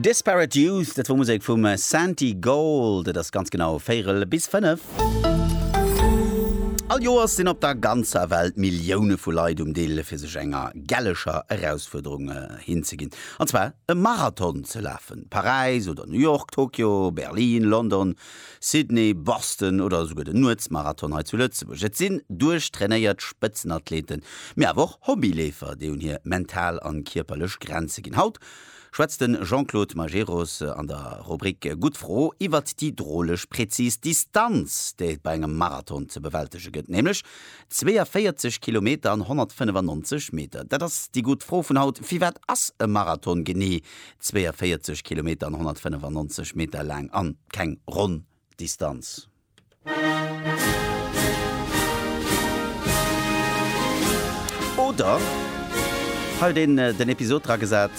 Disparate Youth, dat wor Musek vum Santigold. Et ass ganz genau véierel bis fënnef. All Joers sinn op der ganzer Welt Millioune vu Leit um Dill, fir sech enger gelleger Erausfuerderung hinzeginn, an zwar e Marathon ze lafen. Paräis oder New York, Tokio, Berlin, London, Sydney, Boston oder esouguer den Nuetsmarathon hei zu Lëtzebuerg. Et sinn duerchtrainéiert Spëtzenathleten, mee awer och Hobbyleefer, déi un hir mental a kierperlech Grenze ginn. Haut schwätzt de Jean-Claude Majerus an der Rubrik Gutt Fro iwwert déi droleg präzis Distanz, déi et bei engem Marathon ze bewältege gëtt, nämlech 42 Kilometer an 195 Meter. Dat ass déi gutt Fro vun haut, Firwat ass e Marathon genee 42 Kilometer an 195 Meter laang an keng ronn Distanz. Oder halt een den Episod dra gesat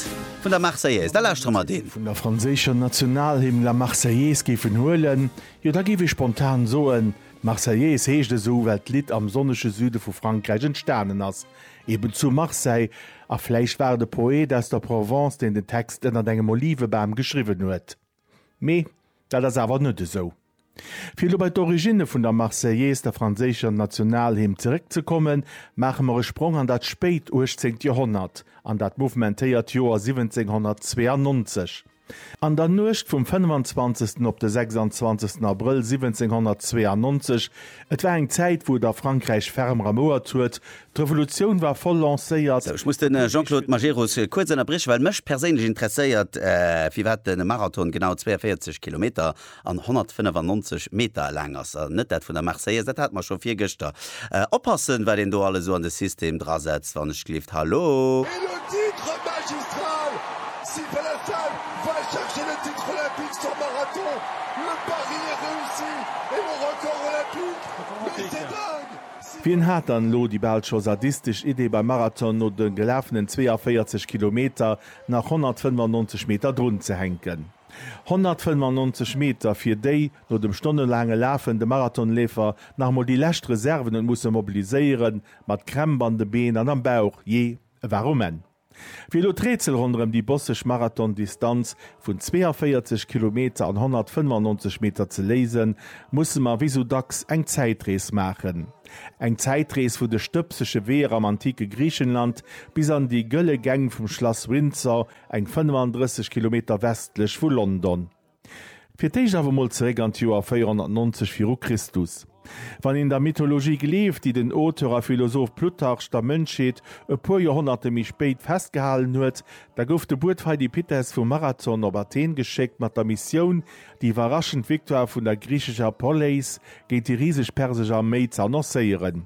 vun der Marseillaise. Da lauschtere mer deen. Vun der franséischer Nationalhymn La Marseillaise géifen huelen, jo da géif ee spontan soen, d'Marseillaise heescht esou well d'Lidd am sonnege Süde vu Frankräich entstanen ass. eben zu Marseille, a vläicht war et e Poet aus der Provence, deen den Text ënnert engem Olivebam geschriwwen huet. Mee dat ass awer net esou. Fir elo bei d'Originne vun der Marseillaise, der franséischer Nationalhymn, zeréckzekommen, maache mer e Sprong an dat spéit uechtzeent Joerhonnert, an dat mouvementéiert Joer 1792. An der Nuecht vum 25. op de 26. Abrëll 1792, et war eng Zäit, wou et a Frankräich ferm ramouert huet, d'Revolutioun war voll lancéiert, Sou, ech muss de Jean-Claude Majerus kuerz ënnerbrieche well mech perséinlech interesséiert, firwat de Marathon genau 42 Kilometer an 195 Meter laang ass a net dat vun der Marseillaise, dat hate mer scho virgëschter. Oppassen, wat een do alles esou an de System drasetzt, wann ech gelift. Hallo! Et le titre magistral! Si Velefeld va chercher le titre olympique sur marathon, le pari est reussi et le record olympique, mais c'est dingue! Si Wien hat dann elo déi bal scho sadistesch Idee beim Marathon no de gelafenen 42 Kilometer nach 195 Meter drunzehänken? 195 Meter, fir déi no dem stonnelaange Lafen de Marathonleefer nach emol déi lescht Reserven huet musse mobiliséieren, mat Krämp an de Been an am Bauch, jee, e war um Enn. Wéi elo d'Rätsel ronderëm déi bosseg Marathondistanz vun 42 Kilometer an 195 Meter ze léisen, musse mer wéi sou dacks eng Zäitrees maachen. Eng Zäitrees vu de stëbsege Weeër am antike Griichenland bis an déi gëlle Gäng vum Schlass Windsor, eng 35 Kilometer westlech vu London. Fir d'éischt awer mol zeréck an d'Joer 490 viru Christus. Wann een der Mythologie gleeft, déi den Auteur a Philosoph Plutarch der Mënschheet e puer Joerhonnerte méi spéit festgehalen huet, da gouf de Buet Pheidipites vu Marathon op Athen geschéckt mat der Missioun, déi iwwerraschend Victoire vun der griichescher Poleis géint déi riseg persesch Arméi ze annoncéieren.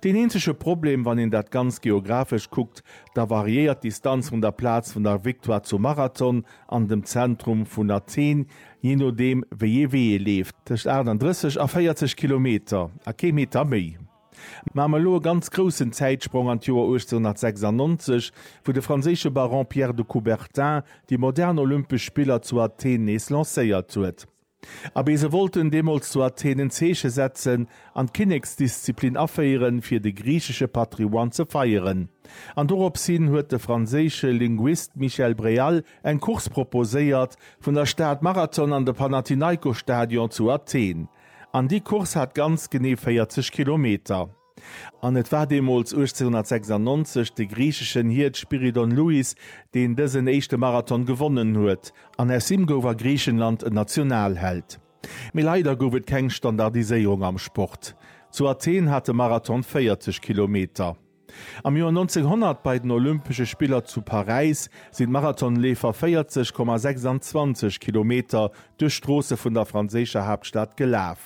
Deen eenzege Problem, wann een dat Ganzt geographesch kuckt, da variéiert d'Distanz vun der Plaz vun der Victoire zum Marathon an dem Zentrum vun Athen, jee nodeem wéi ee Wee ee leeft, tëscht 38 a 40 Kilometer a kee Meter méi. Maache mer elo e ganz groussen Zäitsprong an d'Joer 1896, wou de franséische Baron Pierre de Coubertin déi modern Olympesch Spiller zu Athen nees lancéiert huet. Abee, se wollten deemools zu Athen en Zeeche setzen an d'Kinneksdisziplin aféieren, fir de griichesche Patrimoine ze feieren. An dorops hin huet de franséische Linguist Michel Bréal eng Course proposéiert, vun der Stad Marathon an de Panathinaikosstadion zu Athen. An déi Course hat ganz genee 40 Kilometer. An et war deemools 1896 de griicheschen Hiert Spyridon Louis, deen dësen éischte Marathon gewonnen huet, an aus him gouf a Griichenland en Nationalheld. Mee leider gouf et keng Standardiséierung am Sport. Zu Athen hat de Marathon 40 Kilometer. Am Joer 1900 bei den Olympesche Spiller zu Paräis sinn d'Marathonleefer 40,26 Kilometer duerch d'Stroosse vun der franséischer Haaptstad gelaf.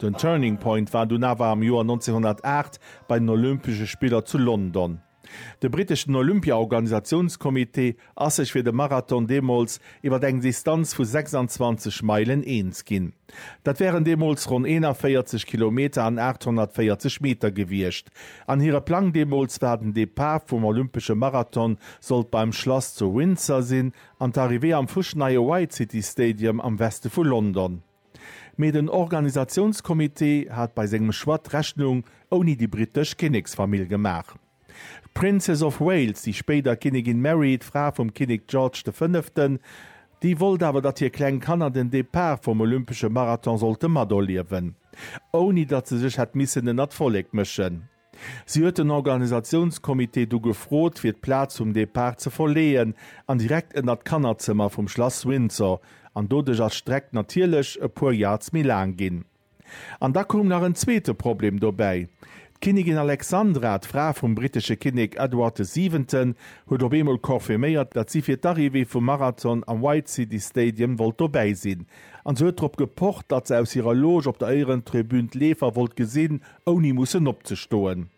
Den Turning Point war dunn awer am Joer 1908 bei den Olympesche Spiller zu London. De britteschen Olympia-Organisatiounscomité ass sech fir de Marathon deemools iwwer eng Distanz vu 26 Meilen eens ginn. Dat wären deemools ronn 41 Kilometer an 840 Meter gewiescht an hire Plang deemools war, den Depart vum Olympesche Marathon sollt beim Schlass zu Windsor sinn an d'Arrivée am fuschneie White City Stadium am Weste vu London. Mee den Organisatiounscomité hat bei sengem Choix d'Rechnung ouni déi brittesch Kinneksfamill gemaach. D'Princess of Wales, déi spéider Kinnigin Mary, d'Fra vum Kinnek George de Fënneften, déi wollt awer datt hir kleng Kanner den Depart vum olympesche Marathon sollte materliewen, ouni datt se sech hätt missen ënnert d'Vollek mëschen. Si huet den Organisatiounscomité du gefrot, fir d'Plaz vum Depart ze verleeën an direkt ënner d'Kannerzëmmer vum Schlass Windsor, an doduerch ass d'Streck natierlech e puer Yards méi laang ginn. An da koum nach en zweete Problem dobäi, D'Kinnigin Alexandra, d'Fra vum brittesche Kinnek Edward de Siwenten, huet op eemol confirméiert, datt si fir d'Arrivée vum Marathon am White City Stadium wollt dobäi sinn, an se huet drop gepocht, datt se aus hirer Loge op der Éierentribün d'Leefer wollt gesinn, ouni mussen opzestoen.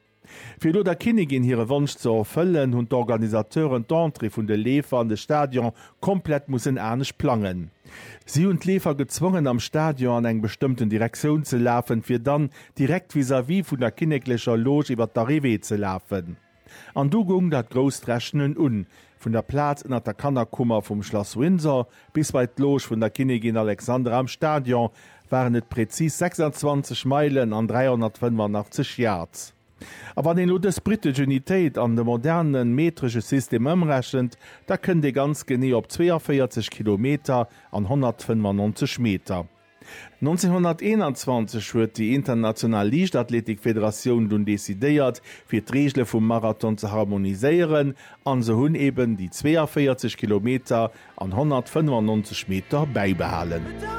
Fir elo der Kinnigin hire Wonsch ze erfëllen, hunn d'Organisateuren d'Entrée vun de Leefer an de Stadion komplett mussen anescht plangen. Si hunn d'Leefer gezwongen, am Stadion an eng bestëmmten Direktioun ze lafen, fir dann direkt vis-à-vis vun der kinneklecher Loge iwwer d'Arrivée ze lafen. An du goung dat grousst Rechnen un, vun der Plaz ënner der Kannerkummer vum Schlass Windsor bis bei d'Loge vun der Kinnigin Alexandra am Stadion waren et präzis 26 Meilen an 385 Yards. A wann een elo dës britesch Unitéit an de moderne metresche System ëmrechent, da kënnt ee ganz genee op 42 Kilometer an 195 Meter. 1921 huet déi international Liichtathletikfederatioun dunn decidéiert, fir d'Reegele vum Marathon ze harmoniséieren, an se hunn eben déi 42 Kilometer an 195 Meter bäibehalen.